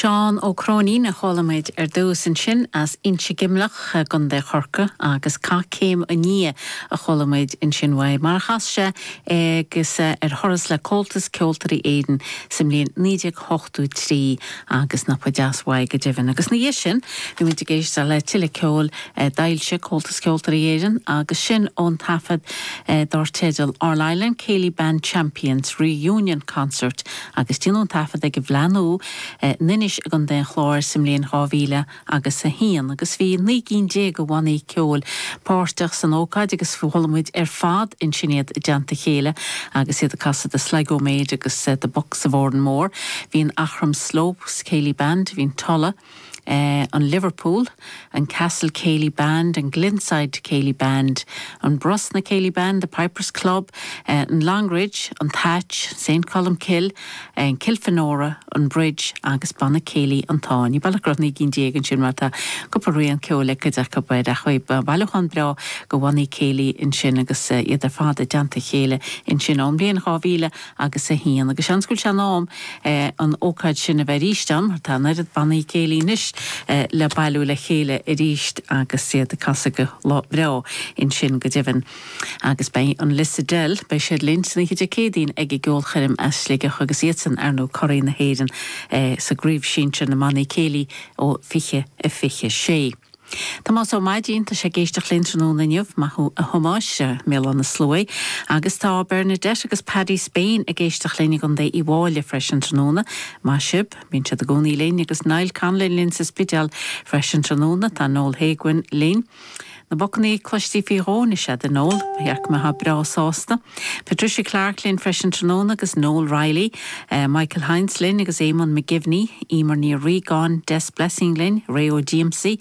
Seán Ó Cróinín a chuala muid ar dtús, ansin as Inse Geimhleach i gContae Chorcaí agus Cath Céim an Fhia a chuala muid ansin uaidh, mar a chas sé agus é ar thuras le Comhaltas Ceoltóirí Éireann sa mbliain 19. tó trí agus nach ba deas uaidh go deimhin. Agus ina dhiaidh sin, bhí muid ag éisteacht le tuilleadh ceoil a d'fhoilsigh Comhaltas Ceoltóirí Éireann agus sin ón taifead dár teideal All-Ireland Céilí Band Champions Reunion Concert agus déanadh an taifead ag an bhFleá Nua in Inis i gContae an Chláir sa mbliain 2000 agus a haon agus bhí naoi gcinn déag de bhannaí ceoil páirteach san ócáid agus chuala muid ar fad ansin iad i dteannta a chéile agus iad ag casadh The Sligo Maid agus The Bucks of Oranmore. Bhí an Aughrim Slopes Céilí Band, bhí an Tulla, an Liverpool, an Castle Céilí Band, an Glenside Céilí Band, an Brosna Céilí Band, The Pipers Club, an Longridge, an Thatch, Saint Colmcille, an Kilfenora, an Bridge agus Banna Céilí an Táin. Ní baileach go raibh naoi gcinn déag ansin mar tá cúpla rian ceoil ag cuid acu b'fhéidir, ach bailiúchán breá de bhannaí céilí ansin agus iad ar fad i dteannta a chéile ansin ón mbliain dhá mhíle agus a haon agus seans go bhfuil sé in am an ócáid sin a bheith arís ann mar tá an oiread bannaí céilí anois le bailiú le chéile arís agus iad ag casadh go breá ansin go deimhin. Agus beidh an Lissadell, beidh siad linn san oíche Dé Céadaoin ag a gceolchoirm as Sligeach agus iadsan ar ndú curaí na hÉireann sa gcraobh sinsir na mbannaí céilí ó 20 a 26. Tomás Ó Maidín, tá sé ag éisteacht linn tráthnóna inniu, maith thú a Thomáis, i mBéal Átha na Sluaighe. Agus tá Bernadette agus Paddy Spain ag éisteacht linn i gContae Uíbh Fhailí freisin tráthnóna, maith sibh, bíonn siad i gcónaí linn agus Niall Conlon linn sa Spidéal freisin tráthnóna, tá Noel Héguin linn, Na bocannaí cloiste faoi dhó anois a'd a Noel. Ba dhearc mé atá breá sásta. Patricia Clarke linn freisin tráthnóna agus Noel Reilly, Michael Hynes linn agus Éamonn McGivney, Emer Ní Riagáin, Des Blessing linn, Ray Ó Díomsaí,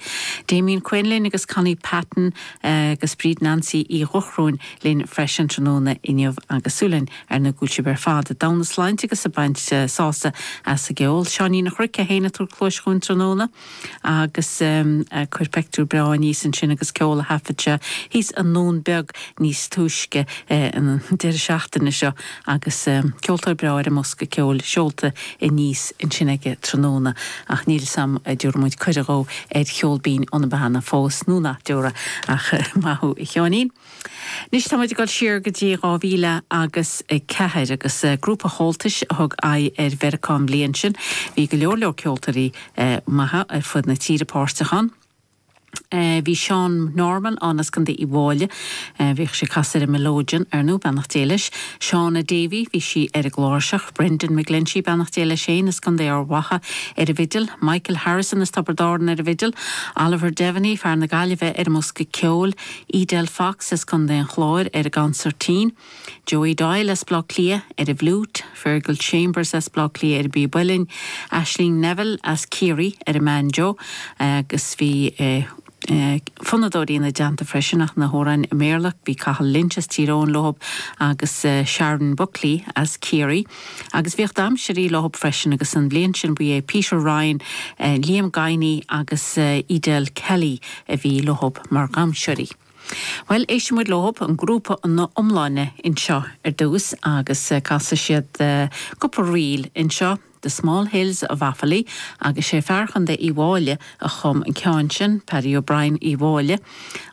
Damien Quinn linn agus Connie Patton agus Bríd Nansaí Uí Dhuchróin linn freisin tráthnóna inniu agus súil againn ar ndú go bhfuil sibh ar fad i dtogha na sláinte agus ag baint sásamh as an gceol. Seáinín a' Chnoic é féin ag tabhairt cluais dhúinn tráthnóna. agus chuir pictiúr breá aníos ansin agus ceol a thaifead sé thíos i nDún Beag níos túisce an deireadh seachtaine seo agus ceoltóir breá ar an mbosca ceoil seolta aníos ansin aige tráthnóna ach níl 'fhios a'm a' dtiúrfaidh muid cuireadh dhó ar Cheol Binn ó na Beanna fós nó nach dtiúrfaidh ach maith thú a Sheáinín. Anois táimid ag dul siar go dtí dhá mhíle agus ceathair agus grúpa Chomhaltais a thug aghaidh ar Mheiriceá an bhliain sin. Bhí go leor leor ceoltóirí maithe ar fud na tíre páirteach ann. Bhí Sean Norman ann as Contae Uíbh Fhailí. Bhíodh sé ag casadh ar an mileoidean, ar ndóigh, beannacht Dé leis. Shauna Davey, bhí sí ar an gcláirseach. Brendan McGlinchey, beannacht Dé leis féin, as Contae Ard Mhacha ar an bhfidil. Michael Harrison as Tiobraid Árann ar an bhfidil. Oliver Diviney, fear na Gaillimhe ar an mbosca ceoil. Edel Fox as Co. an Chláir ar an gconsairtín, Joey Doyle as Bleá Cliath ar an bhfliúit, Fergal Chambers as Bleá Cliath ar an bpíb uilleann, Aisling Neville as Ciarraí ar an mbanjo agus bhí fonnadóirí ina dteannta freisin ach na hamhráin i mBéarla, bhí Cathal Lynch as Tír Eoghain leo agus Sharon Buckley as Ciarraí. Agus bhí damhsóirí leo freisin agus an bhliain sin ba é Peter Ryan, Liam Guiney agus Edel Kelly a bhí leo mar dhamhsóirí. Bhuel, éistfidh muid leo, an grúpa ina iomláine anseo ar dtús agus casfaidh siad cúpla ríl anseo, The Small Hills of Offaly agus sé fear Chontae Uíbh Fhailí a chum an ceann sin, Paddy O'Brien Uíbh Fhailí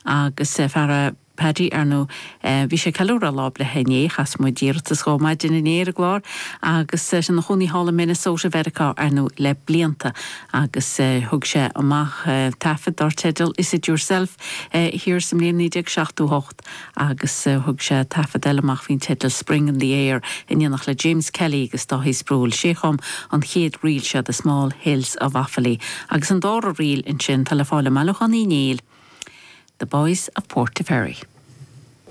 agus fear. Paddy, ar ndóigh, eh, bhí sé ag ceiliúradh Lá Breithe inné, chas muid iarratas dhó maidin inné ar an gclár agus, eh, tá sé ina chónaí thall i Minnesota Mheiriceá, ar ndóigh, le blianta agus, eh, thug sé amach, eh, taifead dar teideal Is It Yourself, eh, thiar sa mbliain 1978 agus, eh, thug sé taifead eile amach faoin teideal Spring in the Air in éineacht le James Kelly agus Dáithí Sproule, sé a chum an chéad ríl seo, The Small Hills of Offaly. Agus an dara ríl ansin, tá le fáil i mbailiúchán Uí Néill, The Boys of Portaferry.